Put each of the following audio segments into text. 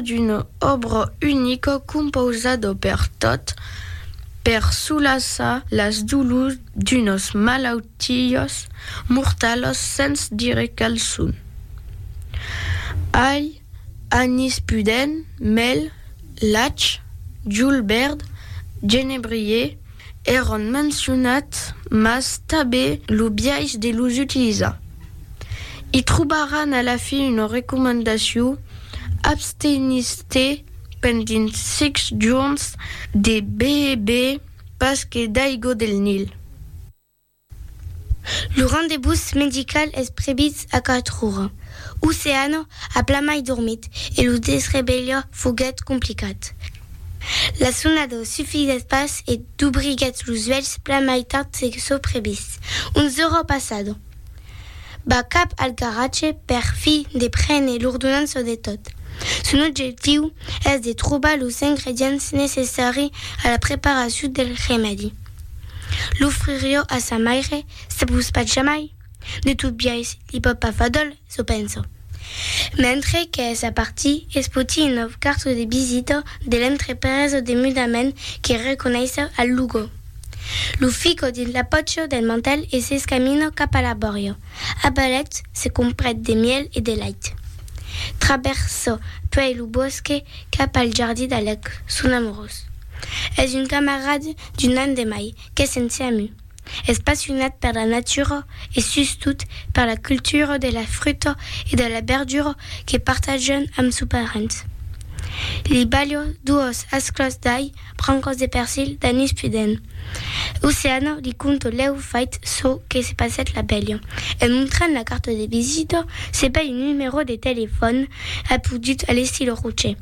tracta d'una òbra unica compausada per tot per solaçar las dolors d'unas malautiás mortalas sens dire quel son. Ai anís pudent, mèl, lach, julbèrd, genebrier, Èran mencionats mas tabé lo biais de los utilizar. I trobaràn a la fin una recomandacion, Abstenís-te pendent 6 jorns de beber pas que d'aigua del Nil. Lo rendebús medical es previst a 4 ora. Oceano a plamai dormit e lo desrevelha foguèt complicat. La sonada sufisèt pas e dubriguèt los uèlhs plamai tard se çò previst, 11 ora passada. Va cap al garatge per fi de prene l'ordonança de tot. Son objectiu es de trobar los ingredients necessari a la preparacion del remèdi. L'ofririo a sa maire, se vos pas jamai, de tot biais li pòt pas far dòl, çò penso. Mentre qu'es a partir, es poti un nòu cartó de visita de l'entrepresa de mudament que reconeissa al Lugo. Lo fica dins la pòcha del mantèl e s'escamina cap a la bòria. A balèt, se comprèt de mièl e de lait. Travèrsa puèi lo bòsque cap al jardí d'Alec, son amorós. Es un camarad d'un an de mai qu'es ensems. Es passionat per la natura e sustot per la cultura de la fruta e de la berdura que partajan amb sos parents. Li balho duos asclòs d'ai, brancas de persil, d'anís pudent. Oceana li conto lèu fait çò que se passèt la velha. En montrant la carta de visita, se bai un numerò de telefòn apodut a l'estil rocher.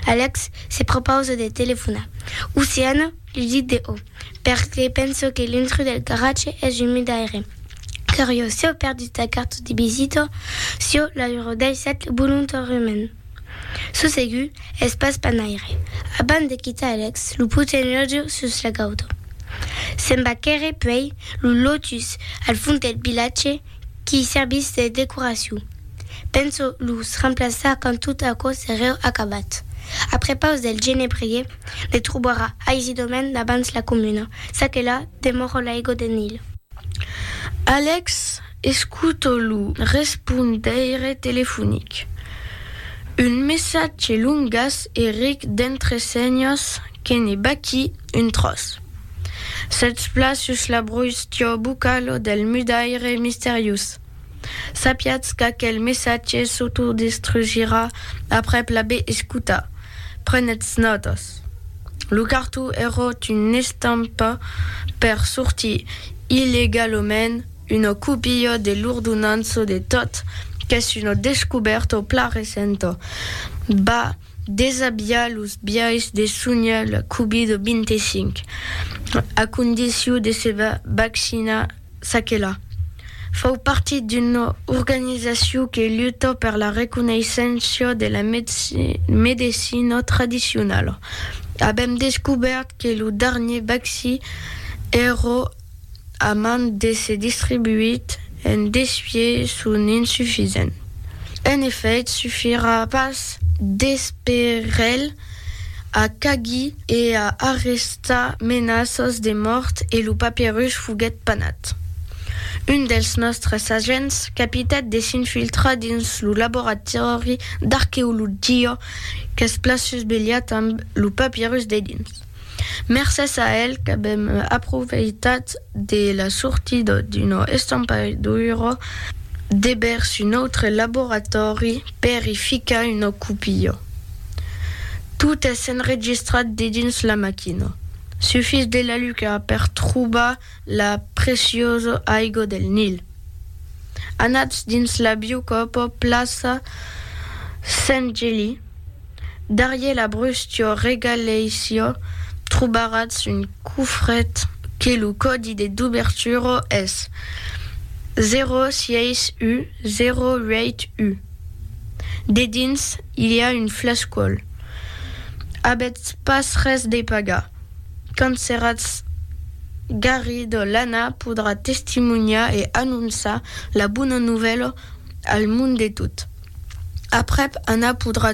Alex se propausa de telefonar. Oceana li dit de o, perque penso que l'intrus del garatge es un mudaire. Curiós, sieu perdut sa carta de visita, sieu l'aurò daissat volontariament. Çò segur, es pas panaire. Abans de quitar Alex lo poten lòtge sus la gauta. Se'n va quèrre puèi lo lotus al fond del vilatge, qui servís de decoracion. Penso los remplaçar quand tot aquò sereu acabat. A prepaus del genebrier, ne trobarà aisidament abans la comuna, ça que la demòro l'aigo de Nil. Alex escuta lo respondeire telefonic. Un messatge longas e ric d'entresenhas que ne baqui. un tròç. Sètz plan sus la brustion bucalo del mudaire misteriós. Sapiatz qu'aquel messatge s'autodestrugira aprèp l'aver escutat. Prenètz nòtas. Lo cartó eròt una estampa per sortir illegalament una copia de l'ordonança de tot qu'es una descubèrta plan recenta. Bah! Desabiar los biais de sonhar la Covid-25 a condicion de se vaccinar çaquelà. Fau partit d'una organizacion que luta per la reconeissença de la medecina tradicionala. Avèm descobèrt que lo darnier vaccí èra A mand d'èsser distribuit en desvier son insufisent. En efèit, sufirà pas d'esperel a cagir e a arrestar menaças de mòrt e lo papierus foguèt panat. Un dels nòstres agents capitèt de s'infiltrar dins lo laboratòri d'arqueologia qu'es plaçus belhat amb lo papierus dedins. Mercés a el qu'avèm aprofeitat de la sortida d'una estampaidura de vèrs un autre laboratòri per i ficar una copia. Tot es enregistrat dedins la maquina. Sufís de la lucar per trobar la preciosa aigo del Nil. Anatz dins la biu copa plaça Sent Geli, darrier la brustia regaleissia trobaratz un cofret que lo còdi de dubertura es 06U 08U. Dedins i a un flascòl. Avètz pas res de pagar. quand seratz garrido l'Anna podrà testimonhar e anonçar la bona novèla al mond de tot. Aprèp Anna podrà